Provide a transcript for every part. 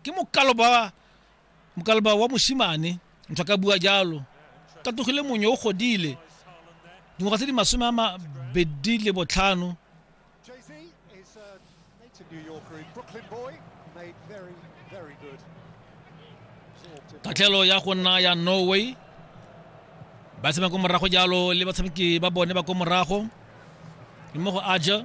ke mokalo ba mokalo ba wa mosimane ntho ka bua jalo ka togile monyo o godile dingwaga tse di masome a mabedi le botlhano tatlhelo ya go nna ya norway ba tshameka ko morago jalo le batshameki ba bone ba ko morago mmogo aja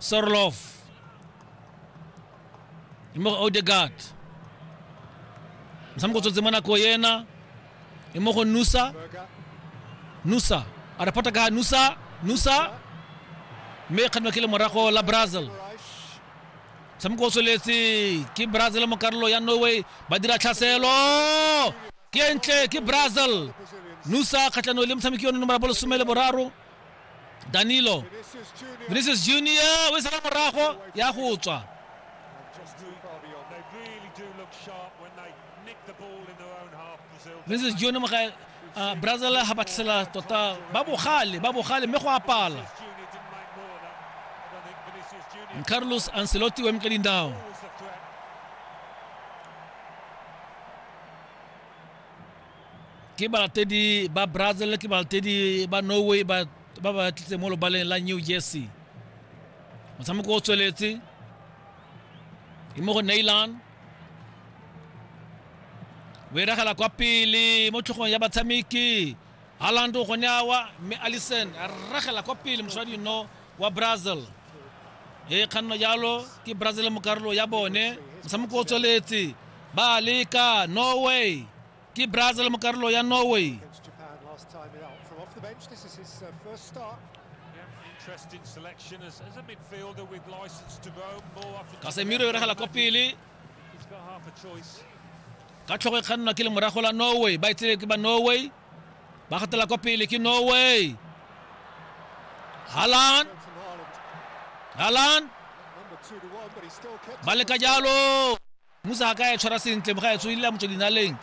Sorlof mo go Odegaard motshameko o tswetse mo nako ena e mo go Nusa Nusa a re phota ka Nusa Nusa mme kganwa ke le morago la Brazil motshameko o tsweletse ke Brazil mo karolo ya Norway ba dira tlhaselo ke ntle ke Brazil Nusa kgatlhanong le motshameki yono nomoro ya bolesome le boraro danilo vinicius junior o e sala morago ya go tswa vinicius junior moga uh, brazil ga ba tlhasela tota ba bogale ba bogale mme go apala carlos ancelotti o eme ka dindao Ke balatedi ba Brazil, ke balatedi ba Norway ba ba ba tlitse mo lobaleng la New Jersey. Motshameko o tsweletse e mo go Neylan. O eragela kwa pele mo tlhogong ya batshameki. Haaland o gone awa mme Allison a ragela kwa pele mosadi no wa Brazil. e kganno jalo ke brazil mo karolo ya bone motshameko o tsweletse ba leka norway ke brazil mo karolo ya norway kasemiro e regela kwa pele ka tlhogo e kgannwa ke le morago la norway ba e tsele ke ba norway ba gatela kwa pele ke norway halan halan ba leka jalo musa a ka e tshwara sentle moga e tswedile motso dinaleng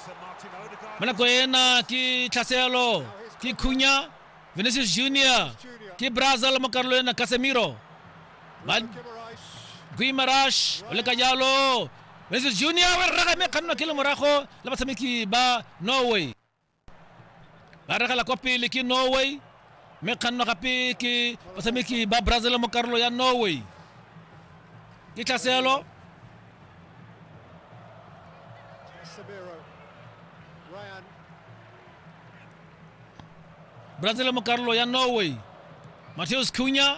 mo nako ena ke tlhaselo ke khunya vinicius junior ke brazil mo karolo ena casemiro ba guimarash o leka jalo vinicius junior o ragame kgannwa ke le morago le batshameki ba norway ba regela kwa pele ke norway mme kganno gape ke batshameki ba brazil mo karolo ya norway ke tlhaselo brazil mo karolo ya norway mateus cunya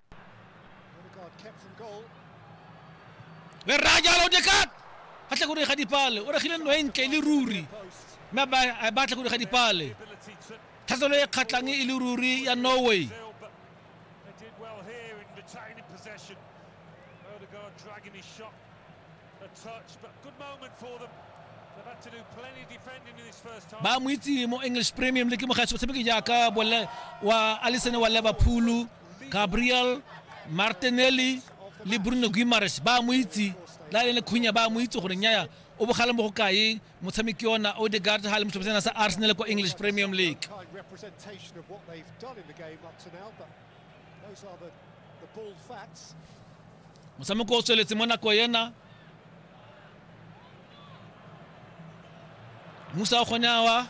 le rra jalo dekat a tla go dira ga dipale o regile nno e ntle e le ruri mme a batla go dira ga dipale tlhaselo e kgatlhang e le ruri ya norway Odegaard dragging his shot ba mo itse mo english premium le ke mogaetsi o tshameke jaaka wa alison wa liverpool gabriel martinelli le bruno guimares ba mo itse la le khunya ba mo itse gore nyaya o bogale mo go kae motshameki ona odegard ga le motlhophetsena sa arsenal kwa english premium league Those are the, the bald facts. motshameko o tsweletse mo nako ena musa o kgonyawa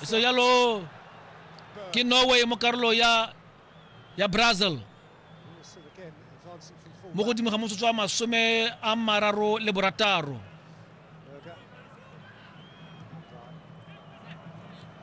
eso jalo ke norway mo karolo ya ya brazil mo godimo ga motsotso wa masome a mararo le borataro